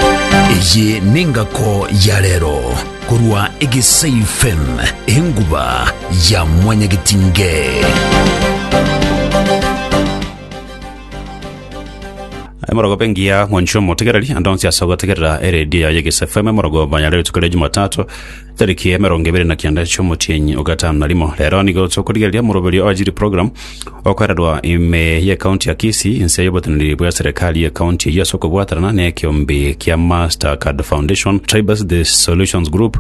Eye nengako ya rero korwa Egesai FM, enguba ya mwanyagetinge. emorogoba engiya mwanchwa omotegereri ande onsi ase ogotegerera eredio yaye gese fm emorogoba yare rituko ria jumatatu Tariki ya emerongo ebere na kianda chi'omotienyi ogatano na rimo rero nigo tokorigereria moroberio o Ajiri Program okorerwa ime ye kaunti ya Kisii inse y'oboteneneri bwa serikali ye kaunti eyio ase okobwatanana n'ekeombe kia Mastercard Foundation Tribes The Solutions Group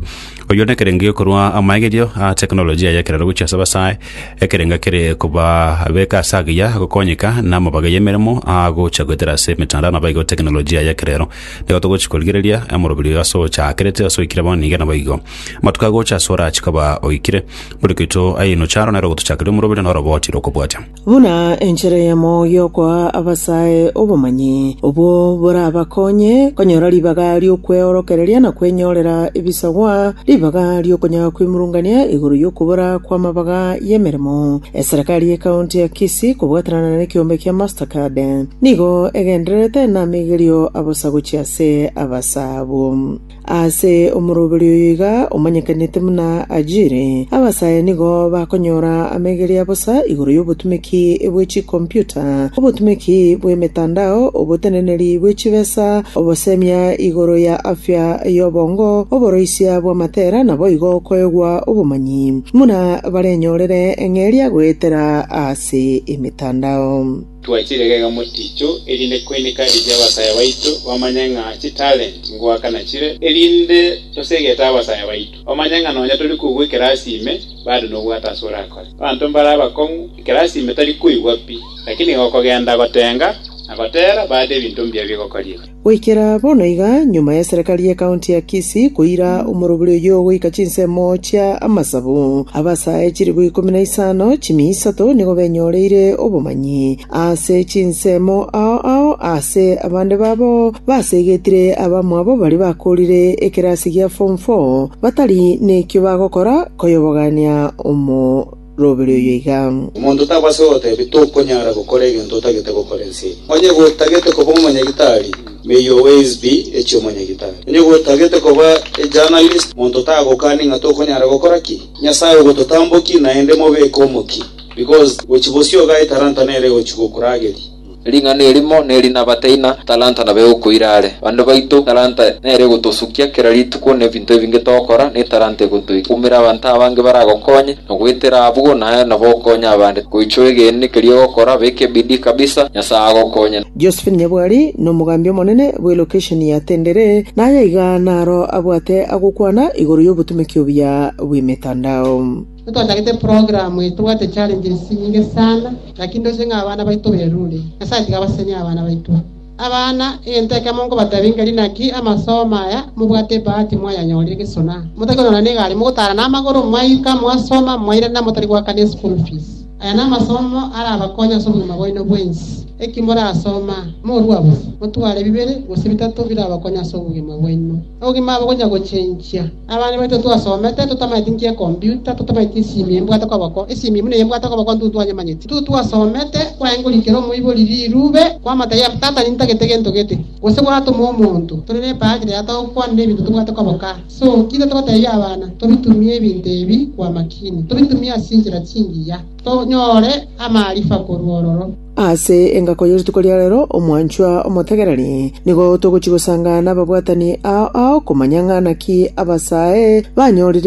oyio nekerengo gekorwa amaegerio a tekinolojia y'ekerero gochia ase abasae ekerengo kere kobabeka ase agiya gokonyeka n'amabaga y'emeremo agocha goetera ase emetandao nabaigo tekinolojia y'ekerero Nigo togochia korigereria emorobiri oyo ase ochakerete, ase oikire bono nigo naboigo. Amatuko agocha ase ore achia koba oikire, bori koito aye inoche aro nere ogotochakeria omorobiri noro obwatire okobwatia. Buna enchera eyemo y'okoa abasae obomanyi, obwo borabakonye konyora ribaga ri'okweorokereria na kwenyorera ebisagwa, ribaga ri'okonyara kwimurungania igoro y'okobora kw'amabaga y'emeremo, Eserekari ye County ya Kisii kobwatanana ne kiombe kia Mastercard nigo egendererete namigerio abosagochi ase abasa abwo. Ase omoroberi oyo iga omanyekanete buna Ajiri, abasa aya nigo bakonyora amigerio abosa igoro y'obotumeki bwe chikomputa, obotumeki bw'emetandao, oboteneneri bwe chibesa, obosemia igoro ya afya y'obongo, oboroisia bw'amatera naboigo koegwa obomanyi buna barenyorere eng'eria goetera ase emetandao. Twachire gega moticho, erinde koineka eria abasaya baito bamanye ng'a chitalenti ngoaka nachire, erinde tosegete abasaya baito bamanye ng'a nonya tori koigwa ekerasi ime bado nobwate ase orakore. Abanto mbare abakong'u, ekerasi ime tari koigwa pi, lakini nigo okogenda gotenga na gotera bade ebinto mbuya bigokoria. Goikera bono iga, nyuma y'eserekari ye kaunti ya Kisii koira omorobori oyio goika chinsemo chia amasabu, abasae chilifu ikomi na isano chimi isato nigo benyoreire obomanyi ase chinsemo ao ao ase abande babo baseegetire abamwabo baria bakoorire ekerasi gia form four batari nekio bagokora koyobogania omo robere oyo igaa. Omonto taba ase ogotebi, Tokonyara gokora egento otagete gokora ense eye. Onye gotagete koba omonyagitari, may your ways be echia omonyagitari. Onye gotagete koba a journalist, monto tagokani ng'a tokonyara gokora ki? Nyasae ogototamboki, naende mobeke omokia, because gochia bosio igaa etaranta nere egochia gokurageria. Ring'ana erimo neri nabataina talanta na begokwa ire are. Bande baito talanta nere egotosukia kera rituko nebinto ebinge togokora, ne talanta egotoikumera abanto abange baragokonye na goetera abwo naye nabo okonye abande. Goichwe egeene keria ogokora, beka ebidii kabisa, Nyasaye agokonye. Josephine Nyabwari nomogambi omonene bwe lokesheni ya Tendere, naye iga naro abwate agokwana igoro yobotumeki obuya bwemetandao. Ntochagete program eye tobwate challenges chinyinge sana lakini ndoche ng'a abana baito berure. Nyasaye tiga abasenie abana baito. Abana, egento ekemo nkobatebi ngeri naki amasomo aya mobwate ebahati mwayanyorire egesona. Motari konyora na egari mogotara na amagoro mwaika mwasoma mwairana motari goakana eschool fees. Aya namasomo arabakonye ase obogima bwaino bwensi. Eki morasoma, morua bosa, motware bibere gose bitato birabakonye ase obogima bwaino. Obogima abo gonya gochenchia. Abana baito twasomete, totamaeti nki ekombiuta, totamaeti esimi embwate koboko, esimi buna eye mbwate koboko ntwe ntwanyemanyeti. Intwe twasomete, kwaengorigwe kera omoibori rirube, kwamata ya Tata nintagete gento gete, gose gwatoma omonto, tore nebaati rera togokwanera ebinto tobwate koboko aa. So, kiria togotebia abana, tobitumie ebinto ebi kw'amakini, tobitumie ase enchera chingiya, tonyore amaarifa korwa ororo. Ase engako ye rituko ria rero, omwanchwa omotegereri, nigo togochia gosanga nababwatani ao ao komanya ng'a naki abasae banyorire